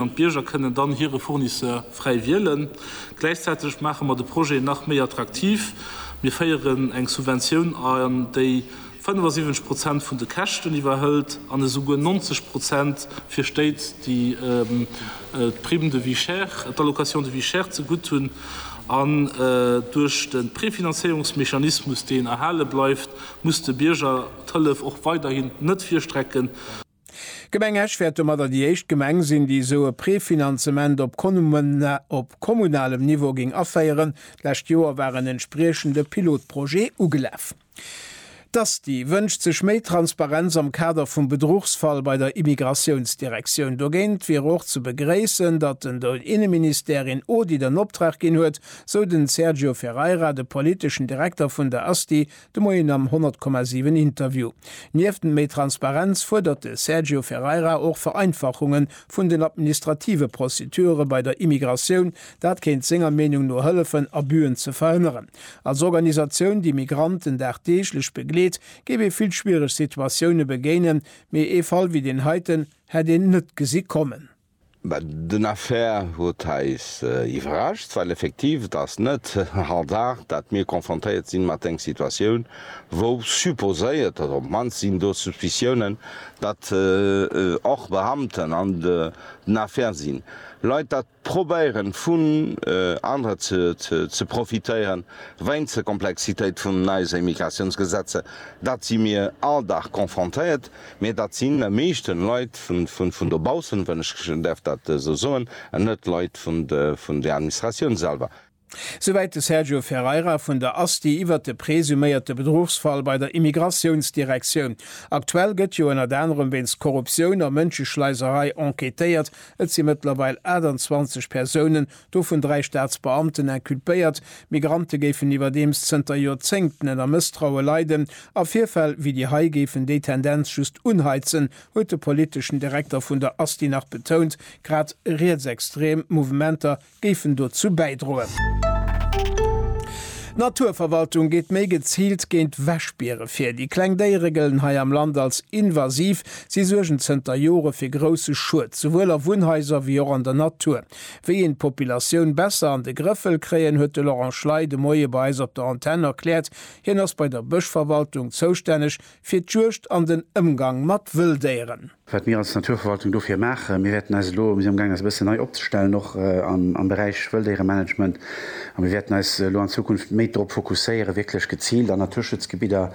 an d'Bierger kënnen dann hire Fournisseur fräi wielen. Gläichzäiteg maache mer de Projet nach méi attraktiv, Mir féieren eng Subventioun an, déi 75 Prozent vun de Käschten iwwerhëlt an esouguer 90 Prozent fir Stéit, déi d'Prime de vie chère, d'Allocation de vie chère zegutt hunn. An duerch de Prefinanzéierungsmechanismus, deen erhale bleift, muss de Bierger d'Hëllef och weiderhin net virstrecken. D'Gemeng Esch wäert domadder déi éischt Gemeng sinn, déi esou e Prefinanzement op op kommunalem Niveau géing aféieren. D'lescht Joer war en entspriechende Pilotprojet ugelaf. D'ASTI wënscht sech méi Transparenz am Kader vum Bedruchsfall bei der Immigratiounsdirektioun. Dogéint wier och ze begréissen, datt den de Inneministère een Audit an Optrag ginn huet, sou den Sergio Ferreira, de politeschen Direkter vun der ASTI, De Moien am 100,7 Interview. Nieft méi Transparenz fuerdert de Sergio Ferreira och Vereinfachunge vun den administrative Procedure bei der Immigratioun. Dat kéint senger Meenung no hëllefen, Abüen ze verhënneren. Als Organisatioun, déi Migranten dagdeeglech begleet, géif ee vill schwiereg Situatioune begéinen, mee ee Fall wéi deen heiten hätt een net gesi kommen. Mä den Affaire huet eis iwwerrascht, well effektiv et ass net Hasard, datt mir konfrontéiert si mat eng Situatioun, wou supposéiert, oder op d'mannst sinn do Suspiciounen, datt och Beamten an den Affaire sinn, Leit datt probéieren, vun anere ze profitéieren, weinst der Komplexitéit vun eise Immigratiounsgesetze. Dat si mir all Dag konfrontéiert. Mee dat sinn am meeschten Leit vun dobaussen, wann ech däerf dat esou soen, an net Leit vun der Administratioun selwer. Souwäit de Sergio Ferreira vun der ASTI iwwert de presuméierte Bedruchsfall bei der Immigratiounsdirektioun. Aktuell gëtt jo ënnert anerem wéinst Korruptioun a Mënscheschleiserei enquêtéiert. Et si mëttlerweil 28 Persounen Dovun dräi Staatsbeamten inculpéiert. D'Migrante géifen iwwerdeems zënter Joerzéngten ënner Mësstraue leiden a Virfäll wéi déi hei géifen déi Tendenz just unheizen, huet de politeschen Direkter vun der Asti nach betount. Grad rietsextrem Mouvementer géifen dozou bäidroen. D'Naturverwaltung geet méi geziilt géint Wäschbiere vir. Déi kleng Déiere gëllen hei am Land als invasiv. Si suergen zënter Jore fir grousse Schued, souwuel a Wunnhaiser wéi och an der Natur. Wéi een d'Populatioun besser an de Grëff wëll kréien, huet de Laurent Schley de Moie bei eis op der Antenn erkläert. Hien ass bei der Bëschverwaltung zoustänneg fir d'Juegd an den Ëmgang mat Wëlldéieren. Wat mir als Naturverwaltung dofir maachen, Mir wäerten eis elo, mir si am gaang eis e bëssen nei opzestellen, och am Beräich Wëlldéieremanagement, a mir wäerten eis elo an Zukunft méi drop fokusséieren, wierklech geziilt an Naturschutzgebidder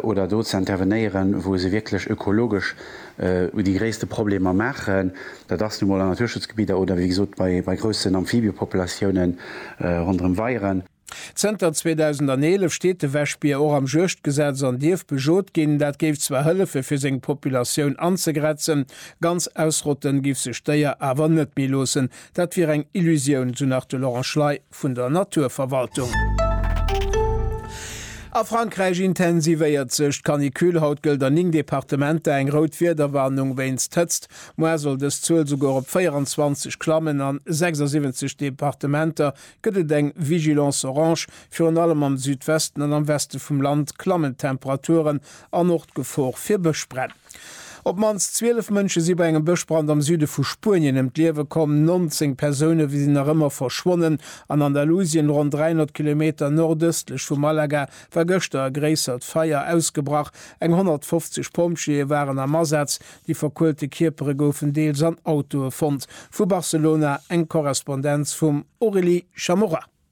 oder do ze intervenéieren, wou se wierklech ökologesch, u déi gréisste Problemer maachen. Dat ass nu mol an Naturschutzgebidder oder wéi gesot bei groussen Amphibiëpopulatiounen ronderëm Weieren. Zënter 2011 steet de Wäschbier och am Juegdgesetz an dierf bejot ginn. Dat géif zwar hëllefe fir seng Populatioun anzegrenzen, ganz ausrotten giff sech d'Déier awer net méi loossen. Dat wier eng Illusioun, esou nach de Laurent Schley. vun der Naturverwaltung. A Frankräich intensivéiert sech d'Canicule. Haut gëllt a 9 Departementer eng rout Wiederwarnung wéinst Hëtzt. Moar soll dës Zuel souguer op 24 klammen. An 76 Departementer gëtt et eng Vigilance orange. Virun allem am Südwesten an am Weste vum Land klammen d'Temperaturen. An och d'Gefor fir Bëschbränn. Op d'mannst 12 Mënsche si bei engem Bëschbrand am Süde vu Spuenien ëm d'Liewe komm. 19 Persoune sinn nach ëmmer verschwonnen. An Andalusien, ronn 300 Kilometer nordëstlech vu Malaga, war gëschter e gréissert Feier ausgebrach. Eng 150 Pompjeeë waren am Asaz. Déi verkuelte Kierpere goufen deels an Autoe fonnt. Vu Barcelona eng Korrespondenz vum Aurélie Chamorro.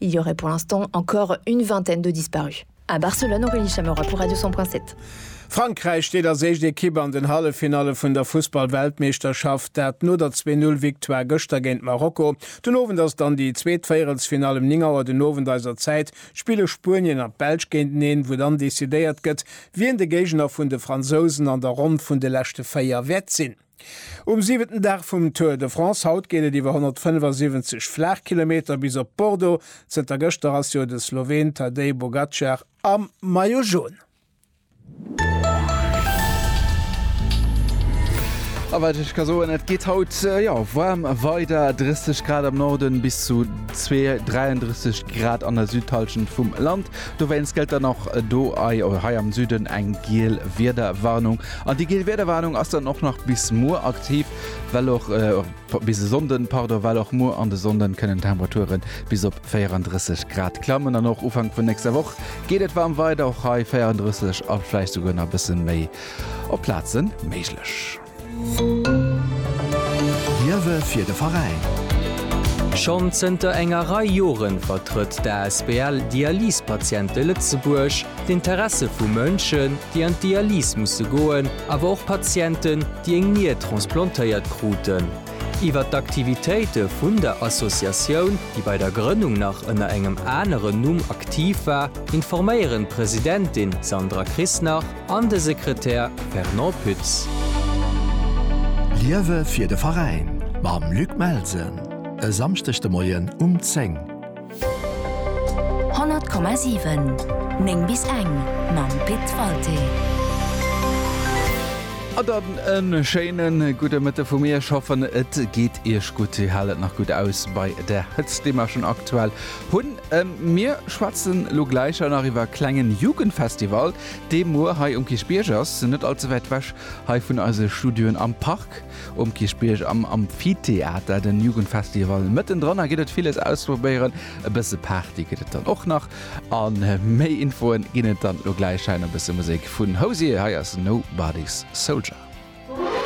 Il y aurait pour l'instant encore une vingtaine de disparus. À Barcelone, Aurélie Chamerois pour Radio 100.7. Frankräich steet als éischt Ekipp an den Halleffinalle vun der Fussball-Weltmeeschterschaft, dat no der Zwee Null Victoire gëschter géint Marokko. Den Owend ass dann déi zweet Véierelsfinall, um 9 Auer den Owend eiser Zäit spille Spuenien an d'Belsch géinteneen, wou dann decidéiert gëtt, wien de Géigner vun de Fransousen an der Ronn vun de leschte 4 wäert sinn. Um siwenten Dag vum Tour de France haut geet et iwwer 175 Flaachkilometer bis op Bordeaux. Zënter gëschter ass jo de Sloween Tadej Pogacar am Maillot Jaune. A wat ech ka soen, et geet haut jo waarm weider, 30 Grad am Norden bis zu 32, 33 Grad an der Südhallschent vum Land. Dowéinst gëllt dann och do hei am Süden eng giel Wiederwarnung. An déi geel Wiederwarnung ass dann och nach bis muer aktiv, well och bis e Sonnden, pardon, well och muer an de Sonnden kënnen d'Temperature bis op 34 Grad klammen. An och Ufank vun nächster Woch geet et waarm weider, och hei 34 a vläicht souguer nach e bësse méi op Plaze méiglech. Liewe fir de Veräin! Schonn zënter enger Rei Jore vertrëtt d'ASBL Dialysepatiente Lëtzebuerg. D'Interesse vu Mënschen, déi an d'Dialys musse goen, awer och Patienten, déi eng Nier transplantéiert kruten. Iwwer d'Aktivitéite vun der Associatioun, déi bei der Grënnung nach ënner engem aneren Numm aktiv war, informéieren d'Presidentin Sandra Krisnach an de Sekretär Fernand Pütz. Liewe fir de Veräin mam Luc Melsen e Samschdeg de Moien um 10. 100,7 9 bis eng mam Pit Walté. A dann en schéinen gudde Mëtte vu mir. Ech hoffen et geet iech gutt, dir haalt nach gutt aus bei der Hëtzt déi mer schon aktuell hunn. Mir schwätzen lo gläich nach iwwer e klengen Jugendfestival dee muer hei um Kierchbierg ass, net allze wäit wech hei vun eise Studioen am Park. um Kierchbierg am Amphitheater, den Jugendfestival mëtten dran. A gitt et villes ausprobéieren, e bësse Party gëtt et dann och nach. An méi Infoen ginn et dann elo gläich hei no bësse Musek vun Hozier. Hei ass Nobody's Soldier.